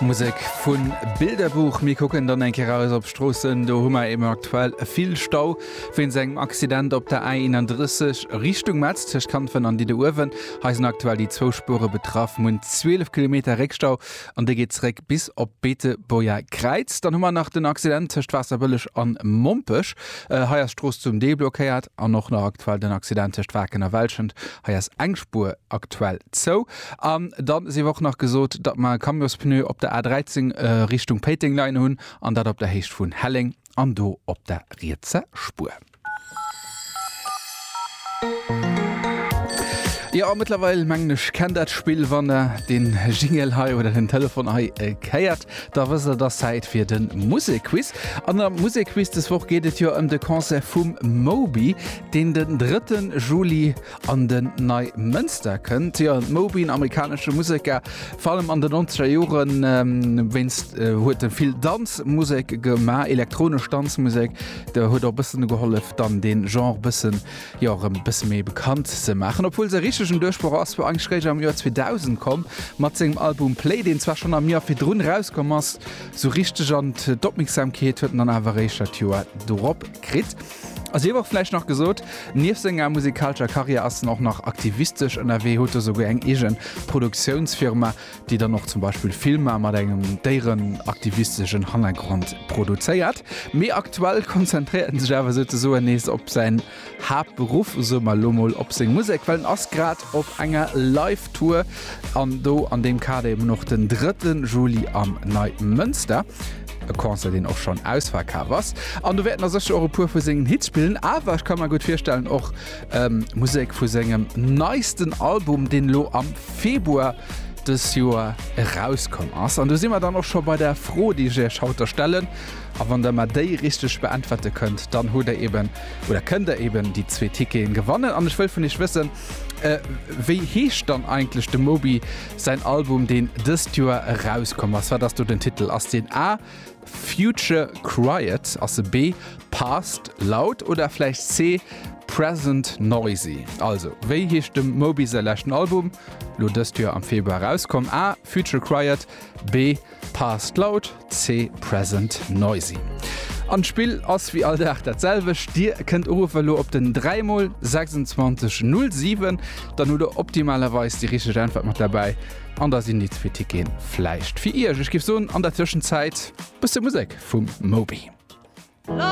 Musek vu Bilderbuch. Mir kucken dann eng Kéier eraus op d'Stroossen. Do hu mer eben aktuell vill Stau wéinst engem Accident op der A31 Richtung Metz tëscht Kanfen an Didde-Uewen. Hei sinn aktuell déi zwou Spuere betraff. Mir hunn 12 Kilometer Réckstau an dee geet zeréck bis op d'Beetebuerger Kräiz. Dann hu mer nach den Accident tëscht Waasserbëlleg an Mompech. Hei ass d'Strooss zum Deel blockéiert. An och nach aktuell den Accident tëscht Waken a Welschent. Hei ass eng Spuer aktuell zou. An da si wor och nach gesot, datt mer e Camiospneu op der A13 Richtung Péiteng leien hunn, an dat op der Héicht vun Helleng an do op der rietser Spuer. Jo, mëttlerweil mengen ech, kennt dat d'Spill. Wann der den Jingle hei oder den Telefon hei héiert, da wësst der, et ass Zäit fir de Musekquiz. An am Musekquiz des Woch geet et jo ëm de Concert vum Moby. deen den drëtten Juli an den Neimënster kënnt. Jo, d'Moby, en amerikanesche Museker, vor allem an den nonzeger Joren, wéinst huet e vill Danzmusek gemaach, elektronesch Danzmusek, da huet och bëssen gehollef, dann dee Genre bëssen, jo, erëm e bësse méi bekannt ze maachen. Obwuel säi richtegen Duerchbroch ass wuel eigentlech réischt am Joer 2000 komm, mat sengem Album Play, deen zwar schonn am Joer virdrun erauskomm ass, sou richteg an d'Opmierksamkeet huet en dann awer eréischt dat Joer dorop kritt. A sief och vläicht nach gesot, nieft senger musikalscher Karriär ass en och nach aktivistesch ënnerwee, huet do souguer eng eege Produktiounsfirma, déi dann och zum Beispill Filmer mat engem déierenaktivisteschen Hannergrond produzéiert. Mee aktuell konzentréiert en sech awer souzesoen nees op säin Haaptberuff, soe mer elo mol, op seng Musek, well en ass grad op enger Live-Tour an do an deem Kader eben och den 3 Juli am Neimënster. E Concert deen och schonn ausverkaf ass. An do wäerten a sécher och e puer vu sengen Hits spillen. Awer ech ka mer gutt virstellen och Musek vu sengem neisten Album, deen elo am Februar dës Joer erauskomm ass. An do si mer dann och scho bei der Fro déi ech iech haut da stellen. A wann der mer déi richteg beäntwerte kënnt, dann hutt der eben, oder kënnt der eben déi zwee Ticketen gewannen. An ech wëll vun iech wëssen, wéi heescht dann eigentlech de Moby Säin Album, deen dëst Joer erauskomm ass, wat ass do den Titel? Ass deen A, Future Quiet, ass e B, Past Loud oder vläicht C, Present Noisy? Also, wéi heescht dem Moby säi leschten Album, lo dëst Joer am Februar erauskomm? A, Future Quiet, B, Past Loud, C Present Noisy. An d'Spill ass wéi all Dag dat selwecht, Dir kënnt uruffen elo op den 3 mol 26 07, dann hutt Der optimalerweis déi richteg Äntwert mat derbäi an da sinn déi zwee Ticketen vläicht fir Iech. Ech géif soen, an der Tëschenzäit bësse Musek vum Moby.